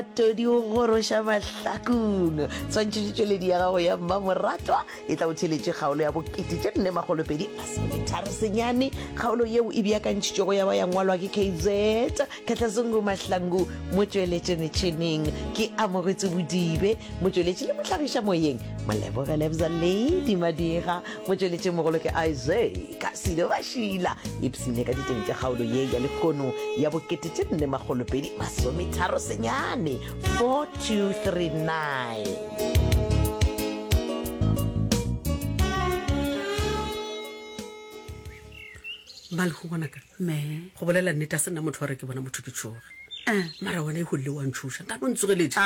Todi o goroša mahlakung. Swantšhetše tšweledi ya gago ya mmamoratwa e tla o theletše kgaolo ya bokete tše nne makgolo pedi masometharo senyane. Kgaolo yeo e beakantšhitšwego ya ba ya ngwalwa ke KZ Kgatlazungu Mahlangu. Motšweletše metšhineng ke Amogetso Bodibe. Motšweletši le mohlagiša moyeng Molebogelebza Lady Madira. Motšweletšimogolo ke Isaac. ka silo ba šila ipsine ka diteng tša kgaolo ye ya lekgono ya bokete tše nne magolopedi masometharo senyane 4239 ba le go bonaka me go bolela nnete a se nna motho wa re ke bona motho ke tshoga eh. mara wena e golele wa ntshosa nka no ntsogeletse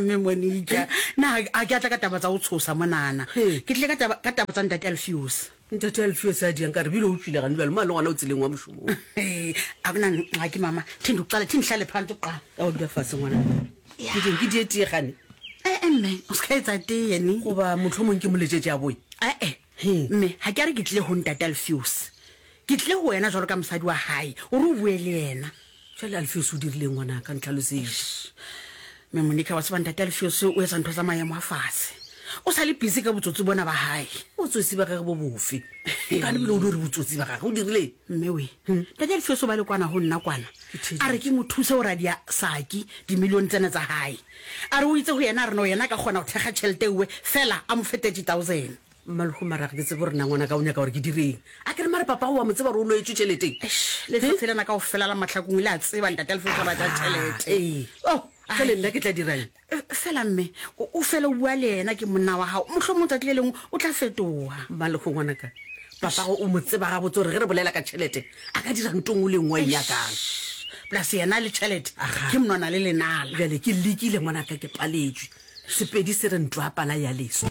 mme monika na a ke atla ka taba tsa go tshosa monana ke tlile ka taba tsa ntate alfiose Ntate Alfio sa diang ka re bile o tšwile gane bjalo mane gona o tseleng wa mošomong. Abna ga ke mama thindu qala thi nhlale phanto qa. Ka o dula fase ngwana. Ke ding ke die tie gane. Eh eh mme o ska etsa tie ni. Go ba motho mong ke moletšetše a boy. Eh eh. Mme ha ke a re ke tle ho ntate Alfios. Ke tle ho wena jwalo ka mosadi wa hae. O re o bue le yena. Jwale Alfios o dirileng ngwana ka ntlhalosetše. Mme Monica wa tseba ntate Alfios o etsa ntho tsa maemo a fatshe. O sa le busy ka botsotsi bona ba hae. Botsotsi ba gage bo bofe? Ka lebile o di re botsotsi ba gage o dirileng? Mme we, ntate Alfios o ba le kwana go nna kwana. A re ke mo thuse go radia Saki dimilione tsene tsa hae. A re o itse go yena a re no yena a ka kgona go thekga tšhelete ewe fela a mo fe 30,000. Mmalhu, Mara ga ke tsebe gore na ngwanaka o nyaka gore ke direng. A ke re mare papago wa mo tseba gore o loetšwe tšelete? Eish, Lefefe lena kao fela la Mahlakong le a tseba ntate a le fetsa batla tšelete. Ee, oh, jale nna ke tla dirang? Fela mme, o, o fela o bua le yena ke monna wa gago. Mohlomong tšatši le lengwe o tla fetoga. Mmalhu, Ngwanaka, papago o mo tseba gabotse gore ge re bolela ka tšhelete, a ka dira ntho nngwe le nngwe a e nyakang. Eish, Plus yena le tšhelete, Aha. ke monwana le lenala. Jale ke lekile ngwanaka ke paletšwe. Sepedi se re ntwa pala ya leswa.